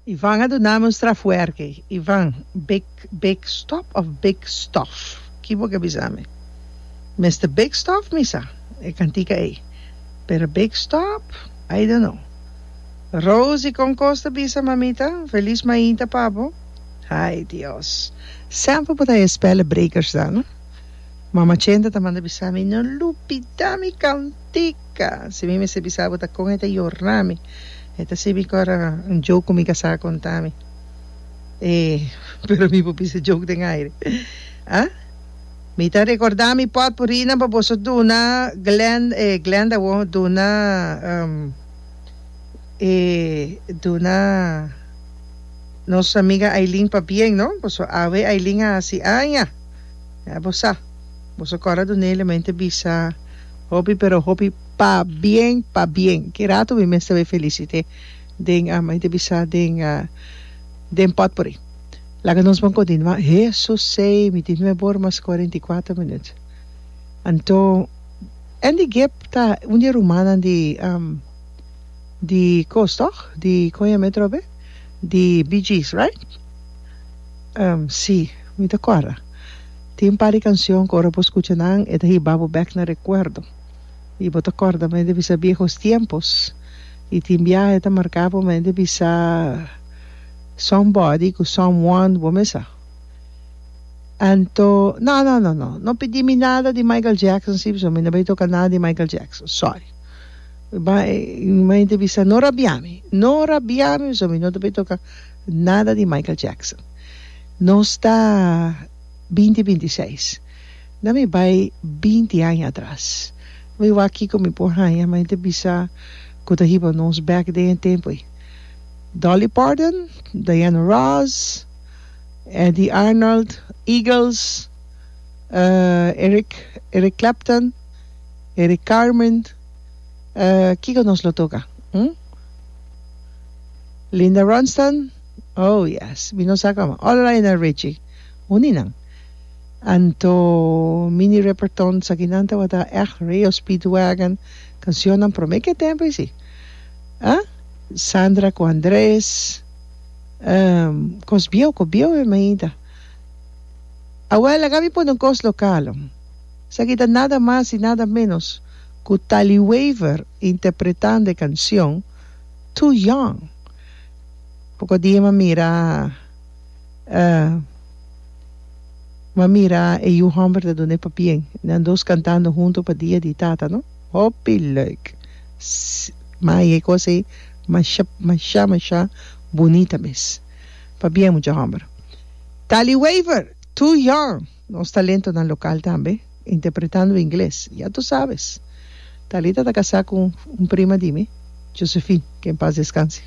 Ivan a dunami un straf werki. Ivan, Big big stop of big stof? Ki bo ke bisa mi? Mister big stof mi sa e kantika ei, pero big stop I don't know. Rosie, Kon kos ta bisa mamita? Felis mainta pa bo. Ai Dios, semper bo ta e spellebrekers dan no. Mama Chenta ta manda bisa mi, no lupida mi kantik. Ka, si mi mester bisa bo ta kon e ta yorna mi, e ta sibi ku ora un joke ku mi kasá a konta mi. E, pero mi por bisa joke den aire. A, Mi ta rekordá mi pòtpurinan pa boso duna Glen, e Glenda awor duna, um, e duna nos amiga Ailin pabien, no? Boso awe Ailin a hasi aña. Ya bo sa. Boso kòrda dun'é, lo men ta bisa. Hopi pero hopi pabien pabien ki rato mi mester bay felicite den a mi ta bisa den a den potpourri laga nos bon continua eso say mi tin me bor mas cuarenta y cuatro minut anto Andy Gipp ta un di e rumannan di am di cos toch di con yame trobe di bgs right am si mi ta corda. Tin un par di kansyon ku ora bo skucha nan e ta hiba bo bèk na rekuerdo i bo ta kòrda mende bisa biehos tiempos. I tin biahe ta marká bo mende bisa Somebody ku Someone bo mesa. Anto, No, no, no, no, no pidi mi nada di Michael Jackson si pasobra mi no bai toka nada di Michael Jackson. Sòri. Mende bisa no rabia mi, no rabia mi pasobra mi no ta bai toka nada di Michael Jackson. Nos ta. Binti binti seis. Na mi bai binti aña atras. Mi wak kiko mi por haña ma e ta bisa ku ta hiba nos bèk den e tempu ei. Dolly Parton, Diana Ross, Eddy Arnold, Eagles, Eric Eric Clapton, Eric Carmen, kiko nos lo toka? Hm? Linda Ronstadt. Oh yes, mi no sa como. All right na Richie, uni nan. Anto Mini Riperton sakinan tabata echt real Speedwagon cancionnan prome ke tempo isi. Ah, Sandra cu Andres, ehm, cos bieu, cos bieu e mainta. Awel a gabi pone un cos local. Esaki ta nada mas y nada menos cu Tali Wever interpretando e cancion Too Young. Poko dia m'a mira e m'a mira e yu hòmber ta duna e papien nan dos kantando huntu pa dia di tata no hopi lèuk mai e kos ei masha masha masha bunita mes pabien mucha hòmber Tali Wever too young. Nos talentonan local tambe interpretando ingles, ya tu sabes. Talita ta casá cu un prima di mi, Josephine, que en paz descanse.